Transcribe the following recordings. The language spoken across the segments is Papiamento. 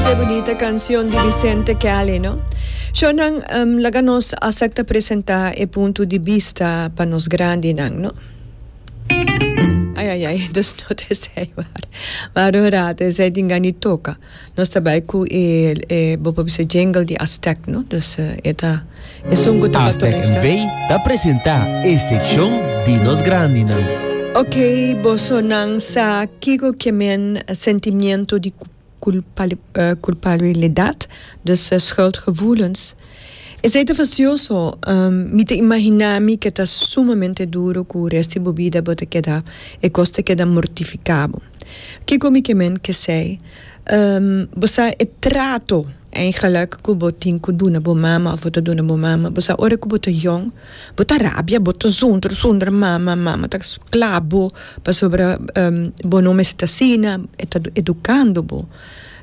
Ke bunita kanshon di Vicente Kelly no. Shornan laga nos asepta presenta e punto di bista pa nos grandinan no. Ai ai ai dos nota esei wari. Wari un rato esei tin gan di toka. Nos ta bai ku e e bo por bisa jingle di Aztec no. Dus e ta esun ku ta Aztec NV ta presenta e sekshon di nos grandinan. Ok bosonan sa kiko ke men sentimiento di ku culpabilidad dus schuldgevoelens. Esei ta facioso. Mi ta imagina mi ke ta sumamente duro cu resti bo bida bo ta keda e cos ta keda mortificabo. Kico mi ke men ke sei? Bo sa e trato eigenlijk cu bo tin cu duna bo mama of bo ta duna bo mama? Bo sa ora cu bo ta jong. Bo ta rabia, bo ta zundru zundru mama, mama ta sclap bo pasobra bo no mester ta asina, e ta educando bo.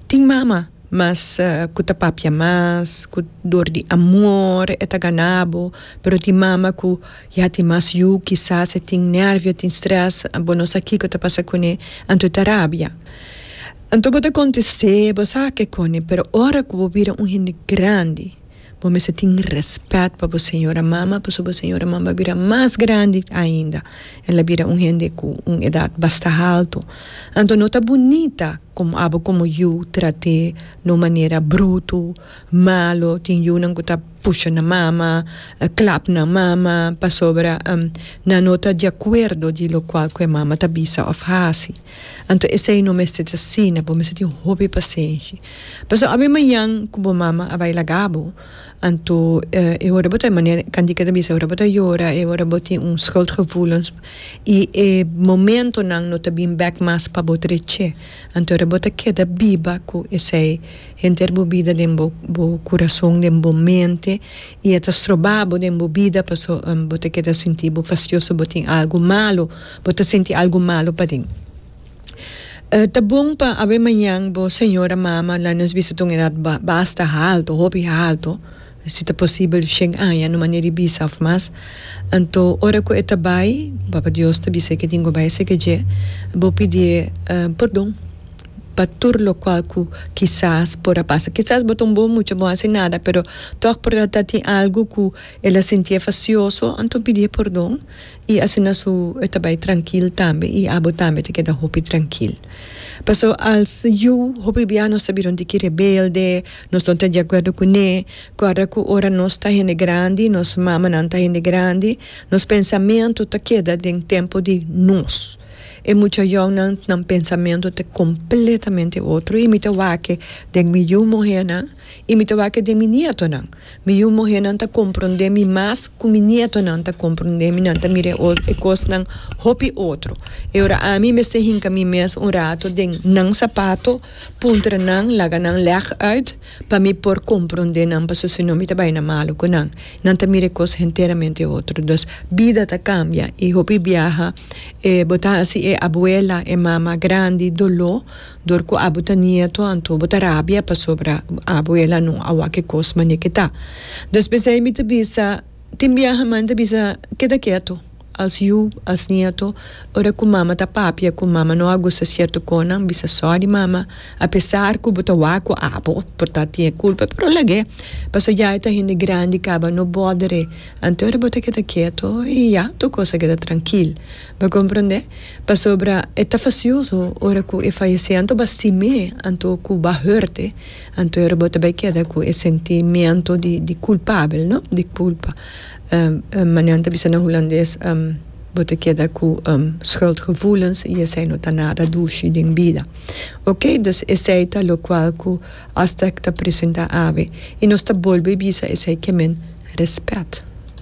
Tin mama mas cu ta papia mas, cu dor di amor e ta gana bo, pero tin mama cu ya tin mas yu, kisas e tin nervio, tin stress, bo no sa kico ta pasa cune, anto e ta rabia. Anto bo ta contest'é, bo sa ke cone, pero ora cu bo bira un hende grandi. Bo mester tin respet pa bo señora mama pasobra bo señora mama a bira mas grandi ainda. El a bira un hende cu un edad basta halto. Anto no ta bunita como abo como yu trat'é na un manera bruto, malo. Tin yunan cu ta pusha nan mama, clap nan mama pasobra nan no ta di acuerdo di locual cu e mama ta bisa of haci. Anto esei no mester ta asina, bo mester tin hopi pasenshi. Pasobra awe mañan ku bo mama a bai laga bo, anto e ora bo ta, manera Candika ta bisa, e ora bo ta yora, e ora bo tin un schuldgevoelens i e momentonan no ta bin bek mas pa bo treché. Anto e ora bo ta keda biba ku esei henter bo bida den bo bo kurason, den bo mente i e ta stroba bo den bo bida, paso bo ta keda sinti bo fastioso, bo tin algu malu. bo ta sinti algu malu paden. Ta bon pa awe mañan bo señora mama la nos bisa ta un edat basta haltu, hopi haltu, si ta posibel shen aña no manera di bisa of mas. Anto ora ku e ta bai, Papa Dios ta bisa e ke tin ku bai eseke dje, bo pidié pordon pa tur lokual ku kisas por a pasa. Kisas bo ta un bon mucha, bo no a hasi nada, pero tòg por ta tin algu ku el a sintié fasioso, anto pidié pordon. I asina su e ta bai trankil tambe i abo tambe ta keda hopi trankil. Paso als yu hopi bia nos a bira un tiki rebelde, nos no ta di akuerdo kuné, kòrda ku ora nos ta hende grandi, nos mamanan ta hende grandi, nos pensamentu ta keda den tempu di nos. E mucha yòunan nan pensamentu ta kompletamente otro i mi ta wak den mi yu muhènan i mi ta wak den mi nietonan. Mi yu muhénan ta komprondé mi mas ku mi nietonan ta komprondé mi, nan ta mira e kosnan hopi otro. E ora ami mester hinka mi mes un rato den nan sapato, puntra nan, laga nan lèg ùit pa mi por komprondé nan pasobra si no mi ta bai na malu ku nan. Nan ta mira e kos henteramente otro. Dus bida ta kambia i hopi biaha bo ta hasi e abuela, e mama grandi doló. Dor ku abo ta nieto anto bo ta rabia pasobra abo el a no a wak e kos mane ke ta. Despues ei mi ta bisa, tin biaha mami ta bisa keda keto, als yu, als nieto, ora ku mama ta papia ku mama no a gusta sierto konan bisa sorry mama, apesar ku bo ta wak ku abo por ta tin e kulpa pero lag'e paso ya e ta hende grandi kaba no bòdere, anto ora bo ta keda keto i ya tur kos a keda trankil. Bo komprondé? Pasobra e ta fasioso ora ku e fayesé anto bo a sim'é, anto ku bo a hurt'é, anto ora bo ta bai keda ku e sentimiento di di kulpabel, no? Di kulpa. Manera nan ta bisa na hulandes, bo ta keda ku schuldgevoelens i esei no ta nada dushi den bida. Oké, dus esei ta lokual ku hasta ta presentá awe i nos ta bolbe bisa esei ke men respèt.